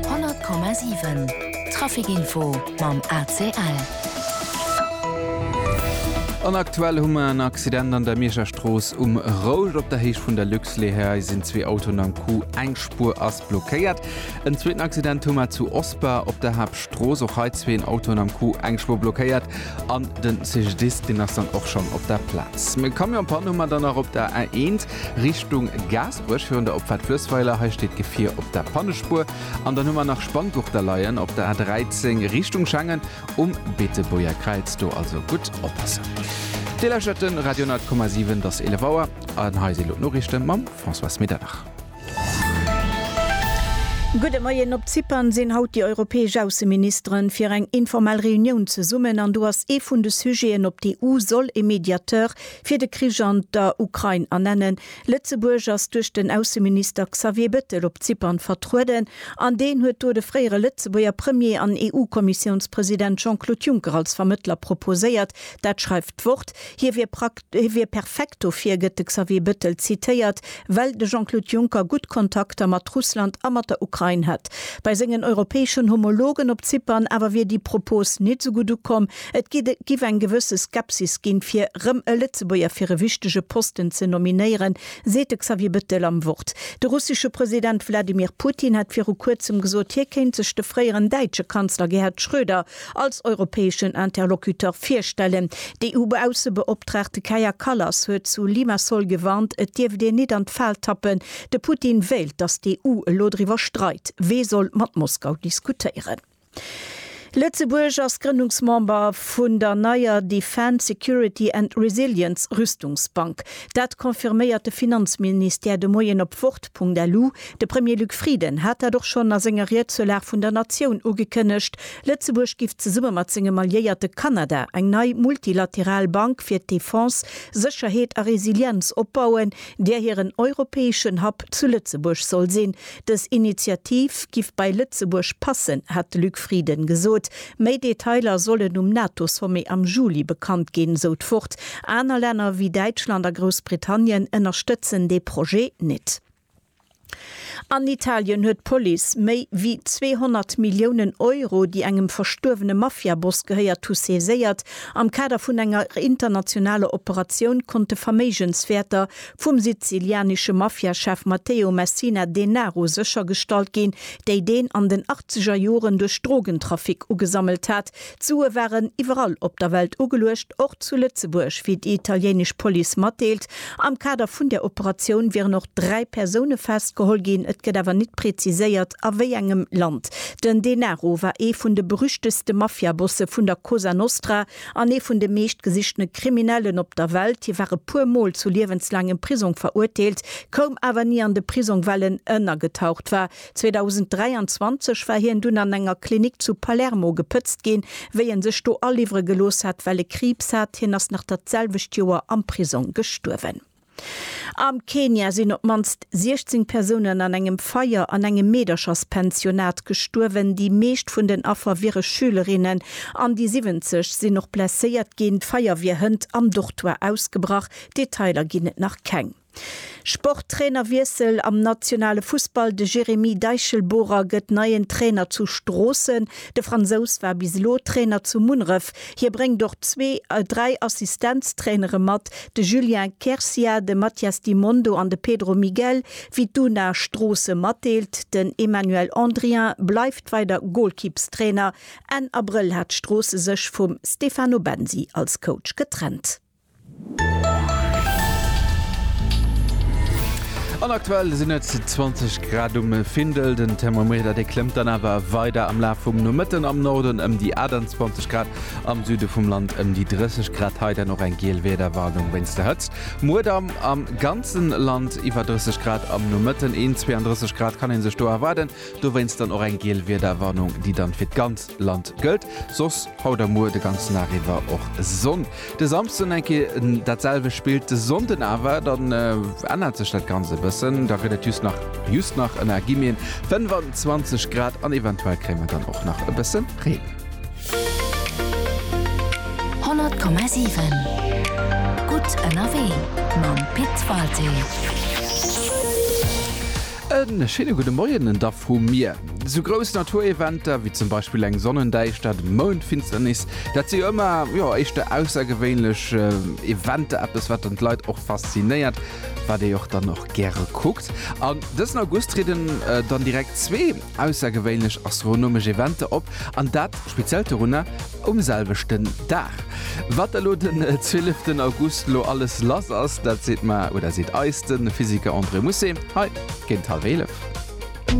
100,7 Trafic-Info mam ACL. An aktuell hu mer en Accident an der Mierscher Strooss um Rouge. Op der Héicht vun der Luxlehei sinn zwee Autoen am Coup, eng Spuer ass blockéiert. En zweeten Accident hu mer zu Osper op der Haaptstrooss. Och hei zween Autoen am Coup, eng Spuer blockéiert. An den CGDIS, deen ass dann och schonn op der Plaz. Camion-Pann hu mer dann nach op der A1. Richtung Gaasperech virun der Opfahrt Flössweiler. Hei steet d'Gefier op der Pannespuer. An dann hu mer nach Spanngurter leien op der A13 Richtung Schengen um Beetebuerger Kräiz. Do also gutt oppassen. Dir lauschtert de Radio 10,7. Et ass 11 Auer an hei si elo d'Noriichte mam Françoise Medernach. Gudde Moien. Op Zypern sinn haut déi europäesch Ausseministere fir eng informell Reunioun zesummen an do ass ee vun de Sujeten, op d'EU soll e Mediateur Fir de Krich an der Ukrain a nennen. Lëtzebuerg ass duerch den Ausseminister Xavier Bettel op Zypern vertrueden an deen huet do de fréiere Lëtzebuerger Premier an EU-Kommissiounspresident Jean-Claude Juncker als Vermëttler proposéiert. Dat schreift d'Wort. Hie wier prakt, hie wier perfekt dofir, gëtt de Xavier Bettel zitéiert, well de Jean-Claude Juncker gutt Kontakter mat Russland a mat der Ukrain hätt. Bei sengen europäeschen Homologen op Zypern awer wier déi Propos net esou gutt ukomm. Et giff eng gewësse Skepsis ginn, fir rëm e Lëtzebuerger fir e wichtege Posten ze nominéieren, seet de Xavier Bettel am Wort. De russesche President Wladimir Putin hat viru Kuerzem gesot, hie kéint sech de fréieren däitsche Kanzler Gerhard Schröder als europäeschen Interlocuteur virstellen. D'EU-Baussebeoptraagte Kaja Kallas huet zu Limassol gewarnt, et dierft een nit an d'Fal tappen, de Putin wéilt, datt d'EU elo driwwer streit, wee soll mat Moskau diskutéieren. Lëtzebuerg ass Grënnungsmember vun der neier Defence, Security and Resilience Rüstungsbank. Dat confirméiert de Finanzministère de Moien op wort.lu. De Premier Luc Frieden hat dat och schonn a senger Ried zur Lag vun der Natioun ugekënnegt. Lëtzebuerg giff zesumme mat sengem Alliéierte Kanada eng nei multilateral Bank fir Defense, Sécherheet a Resilienz opbauen, där hiren europäeschen Hub zu Lëtzebuerg soll sinn. Dës Initiativ giff bei Lëtzebuerg passen, hat de Luc Frieden gesot. Méi Detailer sollen um NATO-Sommet am Juli bekannt ginn, sou d'Ford. Aner Länner ewéi Däitschland a Groussbritannien ënnerstëtzen dee Projet net. An Italien huet d'Police méi ewéi 200 Milliounen Euro, déi engem verstuerwene Mafia-Boss gehéiert hu, saiséiert. Am Kader vun enger internationaler Operatioun konnt de Verméigenswäerter vum sizilianesche Mafia-Chef Matteo Messina Denaro séchergestallt ginn, déi deen an den achtzeger Joren duerch Drogentrafic ugesammelt hat. D'Sue waren iwwerall op der Welt ugeluecht, och zu Lëtzebuerg, wéi déi italienesch Police matdeelt. Am Kader vun där Operatioun wieren och dräi Persoune festgeholl ginn, et gëtt awer net preziséiert, a wéi engem Land. Den Denaro war ee vun de berüchteste Mafia-Bosse vun der Cosa Nostra. an ee vun de meescht gesichtene Kriminellen op der Welt, hie war e puer Mol zu liewenslaangem Prisong verurteelt, koum awer ni an de Prisong, well en ënnergetaucht war. 2023 war hien dunn an enger Klinik zu Palermo gepëtzt ginn, wéi e sech do aliwwere gelooss hat, well e Kriibs hat. Hien ass nach dat selwecht Joer am Prisong gestuerwen. Am Kenia sinn op d'mannst 16 Persounen an engem Feier an engem Meedercherspensionat gestuerwen. Déi meescht vun den Affer wiere Schülerinnen an déi 70 sinn och blesséiert ginn. D'Feier wier hënt am Dortoire ausgebrach, Detailer ginn et nach keng. Sport, Trainerwiessel am nationale Fussball, De Jérémy Deichelbohrer gëtt neien Trainer zu Stroossen. De Fransous war bis elo Trainer zu Munneref. Hie bréngt och zwee, dräi Assistenztrainere mat, de Julien Quercia, de Matias Di Mondo an de Pedro Miguel. Wéi d'Una Stroosse matdeelt, den Emmanuel Andrien bleift weider Golkippstrainer. Enn Abrëll hat Stroosse sech vum Stefano Bensi als Coach getrennt. An aktuell sinn et 20 Grad um Findel. Den Thermometer dee klëmmt dann awer weider am Laf vum Nomëtten am Norden ëm déi 28 Grad, am Süde vum Land ëm déi 30 Grad. Hei dann och eng giel Wiederwarnung wéinst der Hëtzt. Muer da am ganzen Land iwwer 30 Grad, am Nomëtten een 32 Grad kann ee sech do erwaarden. Dowéinst dann och eng giel Wiederwarnung, déi dann fir d'ganz. Land gëllt, soss haut a muer de ganzen Dag iwwer och Sonn. De Samsden eng Kéier dat selwecht Spill, de Sonnden awer, dann ännert sech dat Ganzt e bëssen, da gëtt et just nach, just nach, ënner Guillemeten, 25 Grad an eventuell kréie mer dann och nach e bësse Reen. 100,7 Gutt ënnerwee mam Pit Walté. En schéine gudde Moien da vu mir. Sou grouss Natureventer wéi zum Beispill eng Sonnendäischtert, Moundfinsternis, dat si jo ëmmer, jo, éischter aussergewéinlech Eventer, eppes wat dann d'Leit och faszinéiert, wat ee och dann och gäre kuckt. An dësen August trieden dann direkt zwee Aussergewéinlech astronomesch Eventer op, an dat Speziellt dorunner, um selwechten Dag. Wat elo den 12 August lo alles lass ass, dat seet mer, oder seet eis, de Physiker André Musset hei géint hallwéi 11.